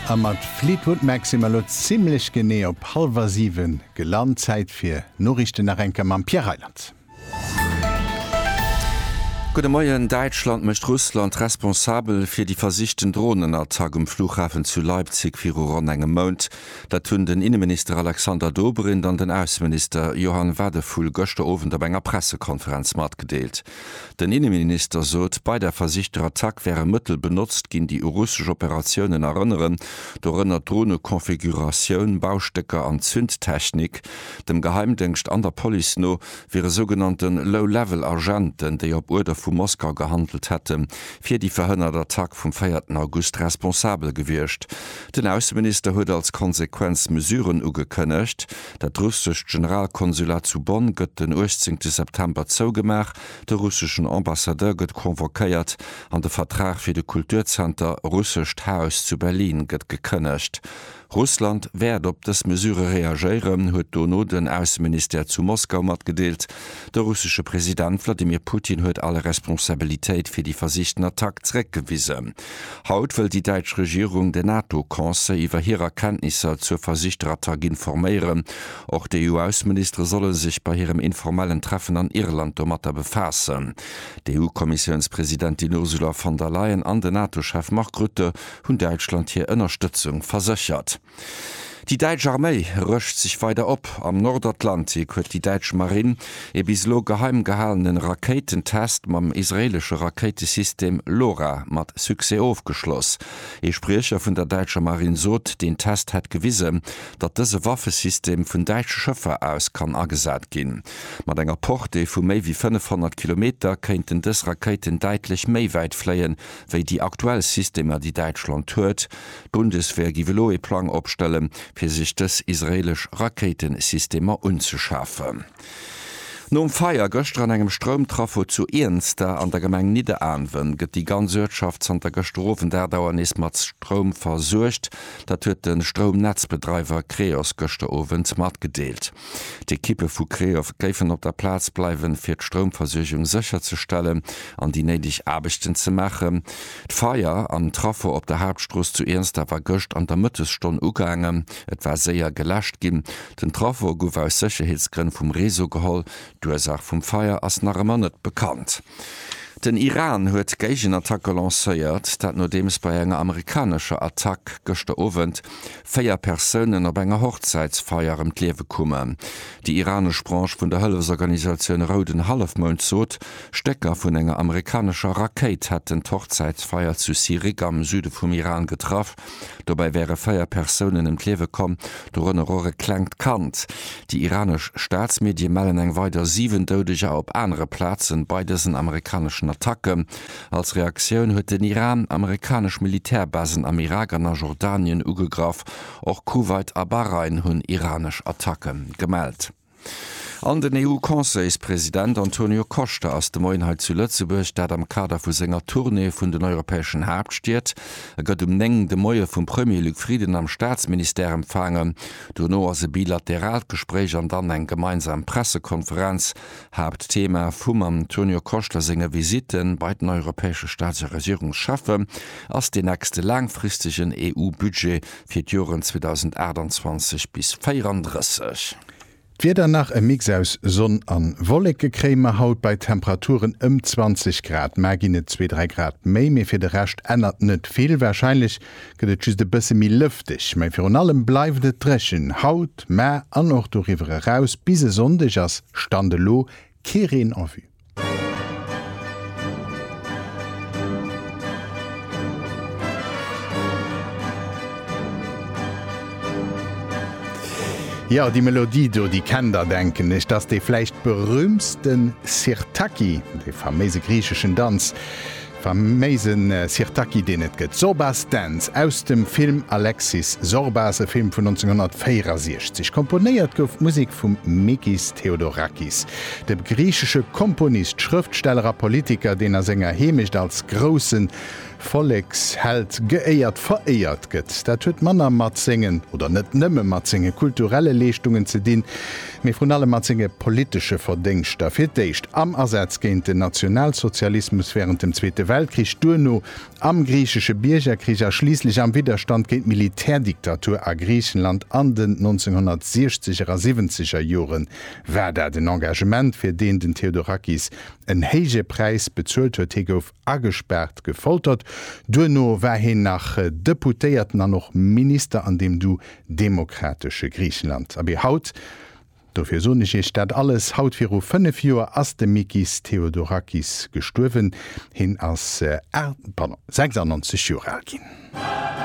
A mat Fleetwood Mac si mer elo zimmlech genee op hallwer 7 gelant. Zäit fir Noriichten nach eng Kéier mam Pierre Reyland. Gudde Moien, Däitschland mécht Russland responsabel fir déi versichten Dronenattack um Flughafen zu Leipzig viru ronn engem Mount. Dat hunn den Inneminister Alexander Dobrindt an den Ausseminister Johann Wadephul gëschter Owend op enger Pressekonferenz matgedeelt. Den Inneminister sot, bei der versichter Attack wäre Mëttel benotzt ginn, déi u russesch Operatiounen erënneren, dorënner Dronekonfiguratioun, Baustécker an Zündtechnik. Dem Geheimdéngscht an der Police no wiere sougenannte Low-Level Agenten, déi op Uerder vu Moskau gehandelt hätten, fir déi verhënnert Attack vum véierten August responsabel gewiescht. Den Ausseminister huet als Konsequenz Mesuren ugekënnegt. Dat russescht Generalkonsulat zu Bonn gëtt den 18 September zougemaach, de russeschen Ambassadeur gëtt convoquéiert an de Vertrag fir de Kulturzenter Russescht Haus zu Berlin gëtt gekënnegt. Russland wäert op dës Mesure reagéieren, huet dono den Ausseministère zu Moskau matgedeelt. De russesche President Wladimir Putin huet all Responsabilitéit fir déi versichten Attack zeréckgewisen. Haut wëll déi däitsch Regierung den NATO-Conseil iwwer hir Erkenntnisser zur versichter Attack informéieren. Och d'EU-Ausseministere solle sech bei hirem informellen Treffen an Irland domatter befaassen. D'EU-Kommissiounspresidentin Ursula von der Leyen an den NATO-Chef Mark Rutte hunn Däitschland hir Ënnerstëtzung verséchert. Déi däitsch Arméi rëscht sech weider op. Am Nordatlantik huet déi däitsch Marinn ee bis elo geheim gehalene Rakéitentest mam israeelesche Rakéitesystem LORA mat Succès ofgeschloss. Ee Spriecher vun der däitscher Marinn sot, deen Test hätt gewisen, datt dëse Waffesystem vun däitsche Schëffer aus kann agesat ginn. Mat enger Portée vu méi wéi 500 Kilometer kéinten dës Rakéiten däitlech méi wäit fléien, wéi déi aktuell Systemer, déi Däitschland huet. D'Bundeswehr giff elo ee Plang opstellen, fir sech dës israeelesch Rakéitensystemer unzeschafen. Nom Feier gëschter an engem Stroumtrafo zu Iernster an der Gemeng Nidderaanwen, gëtt déi ganz Uertschaft zanter gëschter Owend 8 Auer nees mat Stroum versuergt. Dat huet de Stroumnetzbedreiwer Creos gëschter Owend matgedeelt. D'Ekippe vu Creos géifen op der Plaz bleiwen, fir d'Stroumversuergung sécherzestellen an déi néideg Aarbechten ze maachen. D'Feier am Trafo op der Haaptstrooss zu Iernsdaf war gëscht an der Mëttesstonn ugaangen. Et war séier geläscht ginn. Den Trafo gouf aus Sécherheetsgrënn vum Réseau geholl. D'Ursaach vum Feier ass nach ëmmer net bekannt. Den Iran huet Géigenattacke lancéiert, dat nodeems bei enger amerikanescher Attack gëschter Owend véier Persounen op enger Hochzäitsfeier ëm d'Liewe koumen. Déi iranesch Branche vun der Hëllefsorganisatioun Rouden Hallefmound sot, Stécker vun enger amerikanescher Rakéit hätten d'Hochzäitsfeier zu Sirik am Süde vum Iran getraff. Dobäi wäre véier Persounen ëm d'Liewe komm, dorënner och e klengt Kand. Déi iranesch Staatsmedie mellen eng weider 7 Doudeger op anere Plazen bei dësen amerikaneschen Attacken. Als Reaktioun huet den Iran amerikanesch Militärbasen am Irak an a Jordanien ugegraff. Och Kuwait a Bahrain hunn iranesch Attacke gemellt. An den EU-Conseilspresident Antonio Costa ass de Moien hei zu Lëtzebuerg, dat am Kader vu senger Tournée vun den europäeschen Haaptstied. E gëtt um 9 de Moie vum Premier Luc Frieden am Staatsministère empfaangen. Duerno ass e bilateraalt Gespréich an dann eng gemeinsam Pressekonferenz. Haaptthema vum Antonio Costa senge Visitte bei den europäesche Staats a Regierungscheffe ass deen nächste laangfristegen EU-Budget fir d'Joren 2028 bis 34. D'Wieder, nach e Mix aus Sonn an Wolleke kréie mer haut bei Temperaturen ëm 20 Grad. Mar ginn et zwee, dräi Grad méi, mee fir de Rescht ännert net vill. Warscheinlech gëtt et just e bësse méi lëfteg, mee virun allem bleift et dréchen. Haut, mar an och doriwwer eraus bis e Sonndeg ass Stand elo Kee Reen à vue. Jo, déi Melodie do, déi kennt der, denken ech. T'ass dee vläicht berühmtsten Sirtaki, dee faméise griicheschen Danz. Faméisen Sirtaki deen et gëtt. Zorbas Dance aus dem Film Alexis Zorbas, e Film vun 1964. Komponéiert gouf d'Musek vum Mikis Theodorakis, dem griichesche Komponist, Schrëftsteller a Politiker, deen a senger Heemecht als grousse Volleksheld geéiert, veréiert gëtt. Dat huet manner mat sengen, oder net nëmme mat senge kulturelle Leeschtungen ze dinn, mee vrun allem mat senge politesche Verdéngschter, fir d'éischt am Asaz géint den Nationalsozialismus wärend dem Zweete Weltkrich, duerno am griichesche Biergerkrich a schliisslech am Widderstand géint d'Militärdiktatur a Griichenland an den 1960er a siwwenzeger Joren, war dat en Engagement, fir deen den Theodorakis en héije Präis bezuelt huet, hie gouf. agespaart, gefoltert, duerno war hien nach Deputéierten an och Minister an deem du demokratesche Griichenland. Abee haut, dofir soen ech iech dat alles, haut viru 5 Joer ass de Mikis Theodorakis gestuerwen. Hien ass, pardon, 96 Joer al ginn.